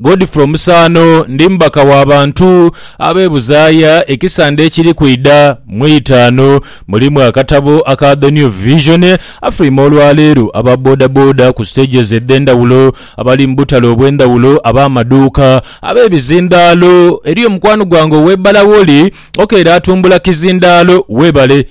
Godfrey Omusaano ndi mubaka wa bantu ab'e Buzaaya. Ekisande ekiri kwidha mu itaanu mulimu akatabo aka The New Vision. Afulwime olwaleero aba bodaboda ku stages edh'endhawulo, abali mu butale obw'endhawulo, ab'amaduuka, ab'ebizindaalo. Eriyo mukwano gwange ow'e Bala woli, okeera atumbula kizindaalo. Weebale.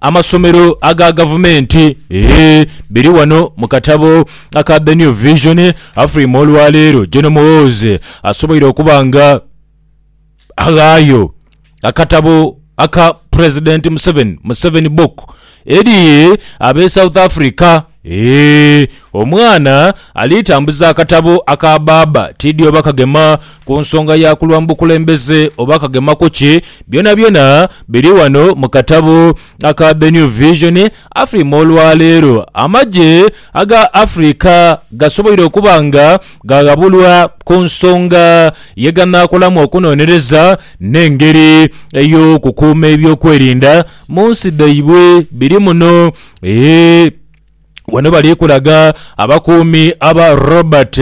Amasomero aga gavumenti eeh biri wano mu katabo aka The New Vision Afrima olwaleero General Muhoozi asoboire okuba nga aghaayo akatabo aka President Museveni, Museveni Book, eri abe South Africa. Eeh omwana ali tambuza akatabo aka baaba tidhi oba kagema ku nsonga ya kulwa mu bukulembeze oba kagema ku ki, byonabyona biri ghano mu katabo aka The New Vision Afrima olwaleero amagye aga Africa gasoboire okuba nga ghaghabulwa ku nsonga ye ganaakolamu okunonereza n'engeri ey'okukuuma eby'okwerinda mu nsi dhaibwe biri muno Eeh, ghano bali kulaga abakuumi aba Robert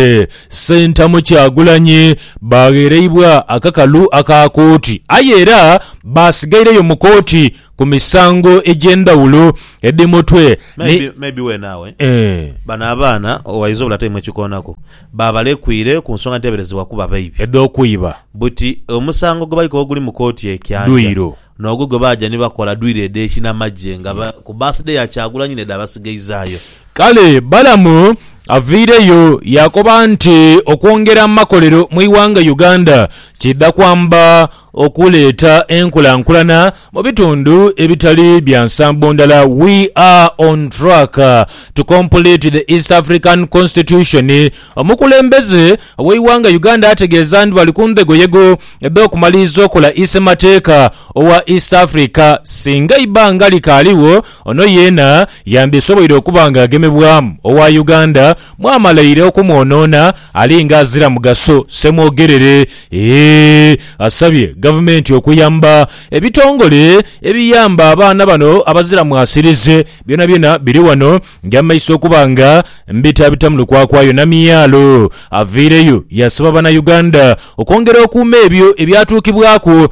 Ssentamu Kyagulanyi baaghereibwa akakalu aka kooti aye era baasigaireyo mu kooti ku misango egy'endhawulo edhi mutwe ni Maybe, maybe we naawe. Eeh. Bano abaana owaidha obula taimu ekikoonaku, baabalekwire ku nsonga edheeberezebwa kuba baibi. Edh'okwiba. Buti omusango gwe bali koba guli mu kooti e Kyanja, Dwiro. N'ogwo gwe baaja ni bakola dwiri edh'ekinamagye nga ku birthday ya Kyagulanyi n'edha basigaizaayo. Kale Balamu avaireyo yaakoba nti okwongera amakolero mu ighanga Uganda kiidha kwamba okuleeta enkulankulana mu bitundu ebitali bya nsambo ndala We are on track to complete the East African Constitution Omukulembeze w'eighanga Uganda ategeeza nti bali ku ndhegoyego edh'okumaliriza okola Isemateeka owa East Africa. Singa eibanga likaaligho, ono yeena yandisoboire okuba nga agemebwamu owa Uganda mwamala ire okumwonoona ali nga azira mugaso, Ssemwogerere ii asabye Gavumenti okuyamba ebitongole ebiyamba abaana bano abazira mwasirize. Byonabyona biri wano. Ndi amaiso okuba nga mbitabita mu lukwakwayo Namyalo aviireyo yasaba Bannayuganda okwongera okuuma ebyo ebyatuukibwaku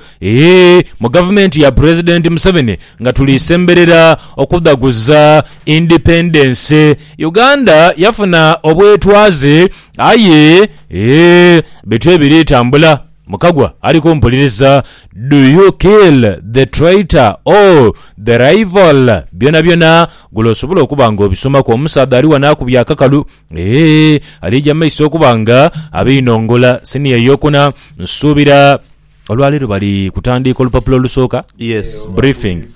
mu Gavumenti ya Pulezidenti Museveni nga tuli semberera okudhaguza Independence. Uganda yafuna obwetwaze aye bityo ebiri tambula. Mukagwa ali kumpuliriza Do you kill the traitor or the rival byonabyona gula osobola okuba nga obisomaku omusaadha ali wano akubye akakalu eeh alija mumaiso okuba nga abinongola siniya eyokuna nsuubira olwaleero bali kutandiika olupapula olusooka? Yes. Briefing.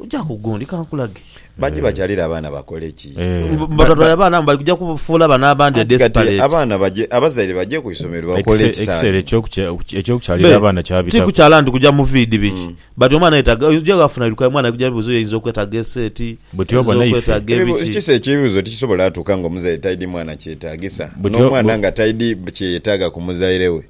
Oja ku gundi kankulage. Bangi bakyalira abaana bakole ki? Babatwale abaana bali kuja kufuula bano abandi Anti kati desperate. abaana baje abazaire baje ku isomero bakole Ekise- ekiseera ekisaanidde. eky'okukya- okukya- eky'okukyalira Be, abaana kyabitaku. tikukyala nti kuja mu fiidi biki but omwana yetaga oja wafuna ebirukayo omwana kuja bibuzo yainza okwetaga eseeti Buti oba yainza naife. okwetaga Ebibu- ebiki Kisa ekibuzo tikisobola atuuka nga omuzaire taidi mwana kyetagisa Buti o- n'omwana bu- nga taidi kyeyetaga ku muzaire we.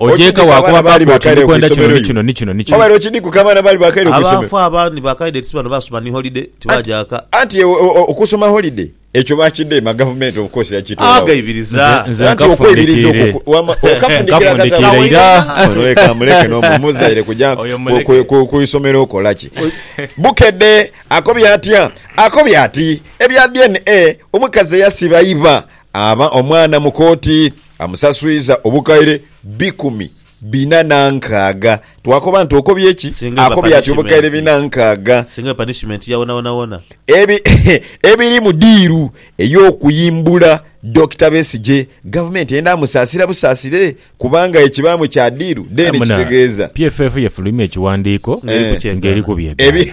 Ogyeka wa kuba baaba oti ndi kwenda kino ni kino ni kino ni kino. Obaire okidhikuka abaana abaali baakaire ku isomero? Abaafa abandi baakaidha eti si bano baasoma ni holide, tibaaja ghaka. Anti okusoma holide ekyo baakidheema gavumenti of course yakitoola gho. Nze nze nkafundikiire nkafundikiire iraa. Ono leka amuleke n'omu muzaire kugya ku isomero kola ki? Bukedde akobye atya? Akobye ati ebya DNA omukazi eyasiba iba aba omwana mu kooti. Amusaswiza obukaire bikumi bina na nkaaga. Twakoba nti, Okobye ki? Singa eba Akobye ati, Obukaire punishimenti. bina nkaaga. Singa eba punishimenti ya wonawona wona. Ebi, ebiri mu diiru ey'okuyimbula Dokita Besigye, Gavumenti eyenda amusaasira busaasire kubanga ekibaamu kya diiru, then Aye muna kitegeeza. PFF yefulumya ekiwandiiko Ng'eri kukyegaana. ng'eri ku byegaana. Ebi,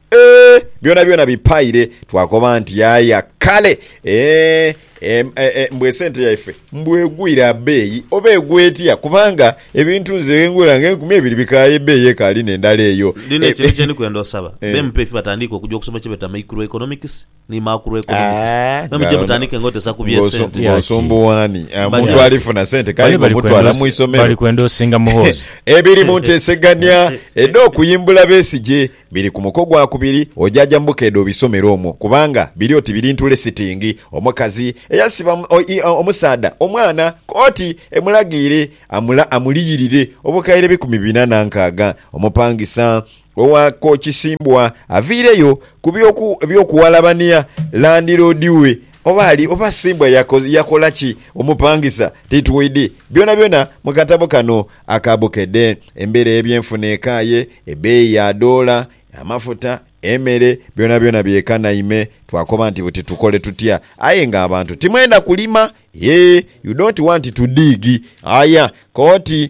Eeh byonabyona bipaire twakoba nti yaya kale eeh mbu esente yaife mbu egwire abeeyi oba egwa etya kubanga ebintu nze ghengula nga enkumi ebiri bikaaye ebeeyi ekaali nendala eyo. Lino ekintu kyendi kwenda osaba, BEMP efi batandiike okuja okusoma kyebeeta Microeconomics, ni macroeconomics. Ah, Mwe muje nga- mutandike nga otesa ku bye ng'oso- sente. ng'osumbuwaani Ah, Bali- muntu ali funa sente kale Bali bali ng'omutwala kwenda osi- mu isomero bali kwenda osinga muhoozi. ebiri mu nteesegania edh'okuyimbula Besigye biri ku muko gwakubiri ojaja mu bukeedo obisomere omwo kubanga biri oti biri ntule sitingi omukazi eyasiba omu- o- i- o- omusaadha omwana kkooti emulagiire amula- amuliyirire obukaire bikumi bina na nkaaga omupangisa Owa ko Kisimbwa aviireyo ku by'oku eby'okuwalabania landiroodi we oba ali oba Kisimbwa yako yakola ki omupangisa titwidi byonabyona mu katabo kano aka Bukedde. Embeera y'ebyenfuna ekaaye, ebbeeyi ya doola, amafuta, emere byonabyona byekanaime twakoba nti buti tukole tutya aye nga abantu timwenda kulima yee you don't want to dig aya koti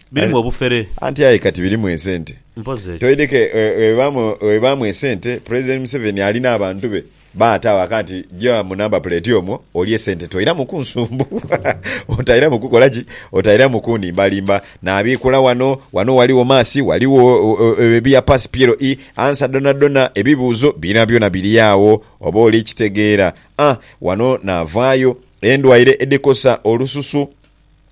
Birimu obufere. Anti aye kati birimu esente. Mpozi ekyo. Toideke webibaamu esente, President Museveni ali n'abantu be baata awaka nti gya mu number plate omwo olye sente toiramu kunsumbuwa, otairamu kukola ki? Otairamu kunimbalimba nabiikula wano, wano waliwo mass, waliwo ebiya pass PLE, answer dhonadhona, ebibuuzo byonabyona biri agho oba oli kitegeera. Ah, wano navaayo endwaire edhikosa olususu.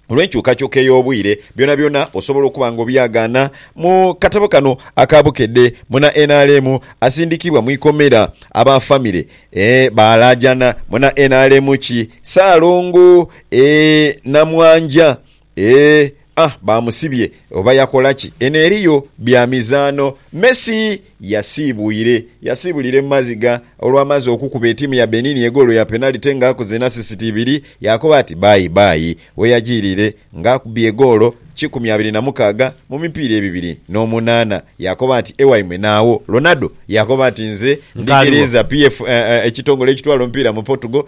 olw'enkyukakyuka ey'obwire, byonabyona osobola okuba nga obyagaana mu katabo kano aka Bukedde. Muna nrm asindikibwa mu ikomera, aba famire ee baalaajana. Muna nrm ki Ssaalongo ee Namwanja ee ah baamusibye oba yakola ki? Eno eriyo bya mizaano. Messi Yasiibwire yasiibulira emumazigha olwamaze okukuba etiimu ya Benin egoolo ya penalite nga akoze n'asisiti ibiri yaakoba ati baayi bbaayi weyajiirire nga akubye egoolo kikumi abiri na mukaaga mu mipiira ebibiri n'omunaana yaakoba ati ewaimwe naagho. Ronaldo yaakoba ati nze ndi Ghereza PF ekitongole ekitwala omupiira mu Portugal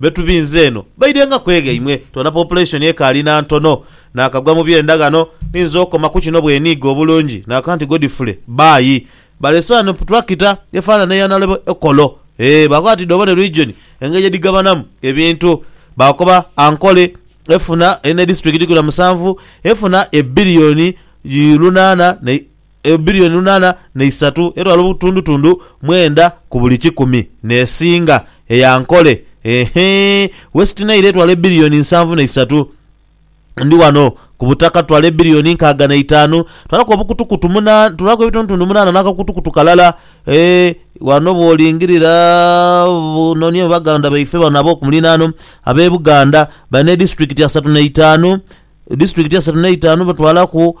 Be tubinze eno baidhenga kweghaimwe. Twona population ekaali na ntono. Nakagwa mu byenda ghano ninze okoma ku kino bweniiga obulungi nakanti Godfrey baayi. Balese ghano tractor efanana eya Nalebo Ekolo. Eeh baakoba bati dhoobone region engeri gyedhigabanamu ebintu. Baakoba Ankole efuna erina edisiturikiti ikumi na musanvu efuna ebillion lunaana ne. eyo bilioni lunaana na isatu etwala obutundutundu mwenda ku buli kikumi n'esinga eya nkole. Eehee. West Nile etwala ebilioni nsanvu na isatu. Ndi wano ku butaka tutwala ebilioni nkaaga na itaanu. Twalaku obukutukutu munaana, twalaku ebitundutundu munaana n'akakutukutu kalala. Ee, wano bw'olingirira nonia mu baganda baife bano ab'oku muliraano, ab'e Buganda bali n'edisiturikiti asatu na itaanu. Disitulikiti asatu n'eitaanu batwalaku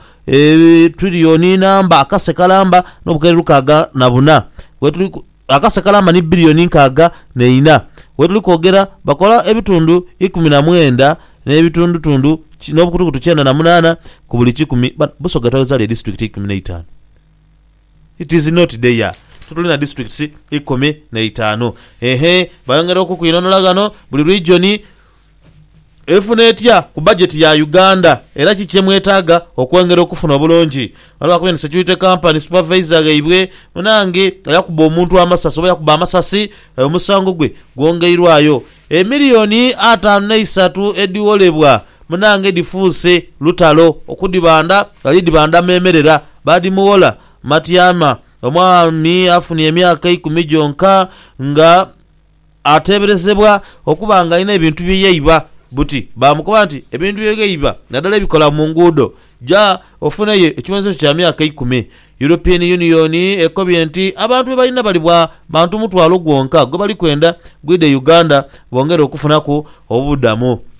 twiriyoni namba akase kalamba n'obukere lukaaga na buna wetuli akase kalamba ni biliyoni nkaaga neina. Wetuli kwogera bakola ebitundu ikumi na mwenda n'ebitundutundu n'obukutukutu kyenda na munaana ku buli kikumi. Busoga twagheza lya disitulikiti ikumi n'eitaanu? It is not there. Tituli na disitulikiti ikumi n'eitaanu. Eehee. Bayongera okukwinhonhola ghano buli rigyoni. Efuna etya ku bajeti ya Uganda era ki kye mwetaaga okwongera okufuna obulungi? Ghano baakubye nti security company supervisor ghaibwe munaange eyakuba omuntu amasasi oba eyakuba amasasi omusango gwe gwongeirwayo. Emiliyoni ataanu n'eisatu edhigholebwa munaange dhifuuse lutalo okudhibanda ghali dhibanda meemerera baadhimughola. Matiama, Omwami afunye emyaka eikumi gyonka nga. ateeberezebwa okuba nga alina ebintu bye yaiba buti baamukoba nti, Ebintu bye ghaiba naddala ebikola mu nguudo, ja ofuneyo ekibonhezo kyo kya myaka ikumi. European Union ekobye nti abantu be balina bali bwa bantu mutwalo gwonka gwe bali kwenda gwidhe Uganda bongere okufunaku obubudhamu.